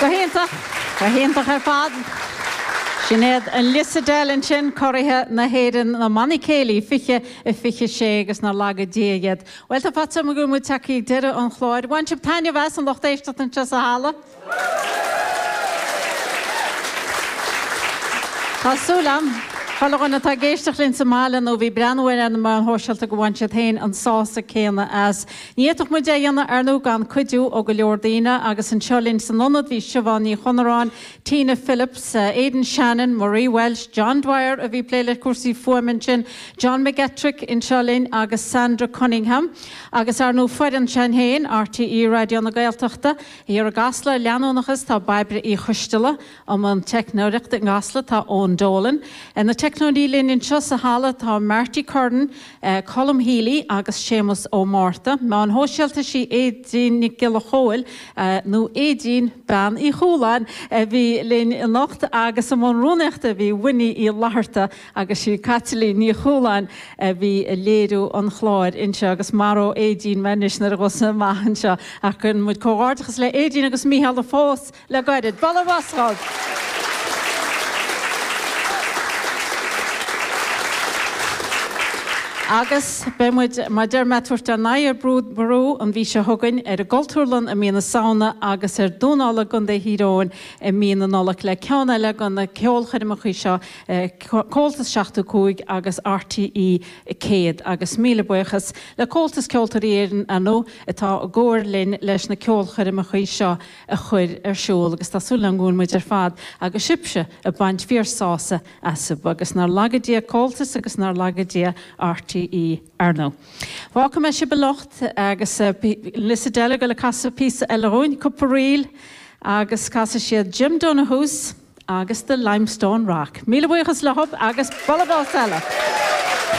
Go hiontach! Go hiontach ar fad! Sin iad an Lissadell ansin, curaidh na hÉireann, na mbannaí céilí, 2026 agus nár laga Dia iad. Bhuel, tá faitíos orm go bhfuil muid tagtha ag deireadh an chláir. Bhain sibh taitneamh as, an lucht éisteachta anseo sa halla? Tá súil agam, chuile dhuine atá ag éisteacht linn sa mbaile nó bhí ag breathnú air ar na meáin shóisialta go bhain siad féin an sásamh céanna as. Ní fhéadfadh muid é a dhéanamh, ar ndú, gan cuidiú ó go leor daoine, agus anseo linn san Ionad bhí Siobhán Ní Chonaráin, Tina Phillips, Aidan Shannon, Marie Walsh, John Dwyer a bhí ag plé le cúrsaí fuaime ansin, John McGettrick anseo linn agus Sandra Cunningham, agus, ar ndú, foireann s'againn féin, RTÉ Raidió na Gaeltachta. Thiar i gCasla, leanúnachas, tá Bairbre Uí Choisteala, i mbun teicneoireacht i gCasla tá Eoin Dolan, ar na teicneoirí linn anseo sa halla tá Marty Curran, Colm Healy agus Séamus Ó Márta, meáin shóisialta sí Aedín Nic Giolla Chomhaill, nó Aedín Bean Uí Chualáin, a bhí linn anocht agus i mbun rúnaíochta bhí Winnie Uí Fhlatharta, agus sí Caitlín Ní Chualáin a bhí ag léiriú an chláir anseo agus maróidh Aedín mé anois nuair a ghabhfas mé amach anseo ach cuireann muid comhghairdeachas le Aedín agus Mícheál a phós le gairid. Bualadh bos dhóibh! Agus beidh muid, mar deir mé, ag tabhairt ár n-aghaidh ar Brú Ború an mhí seo chugainn, ar an gCultúrlann i mí na Samhna agus ar Dún Uladh i gContae Thír Eoghain i mí na Nollag le ceann eile de na ceolchoirmeacha seo Comhaltas 75 agus RTÉ 100, agus míle buíochas le Comhaltas Ceoltóirí Éireann ar ndú atá i gcomhar linn leis na ceolchoirmeacha seo a chur ar siúl agus tá súil agam go bhfuil muid ar fad agus sibhse ag baint fíorshásamh astu agus nár laga Dia Comhaltas agus nár laga Dia RTÉ ar ndú. Fágfaidh muid sibh anocht agus an Lissadell ag goil ag casadh píosa eile dhúinn, cúpla ríl agus casfaidh siad Jim Donoghue's, agus The Limestone Rock. Míle buíochas leo agus bualadh bos eile!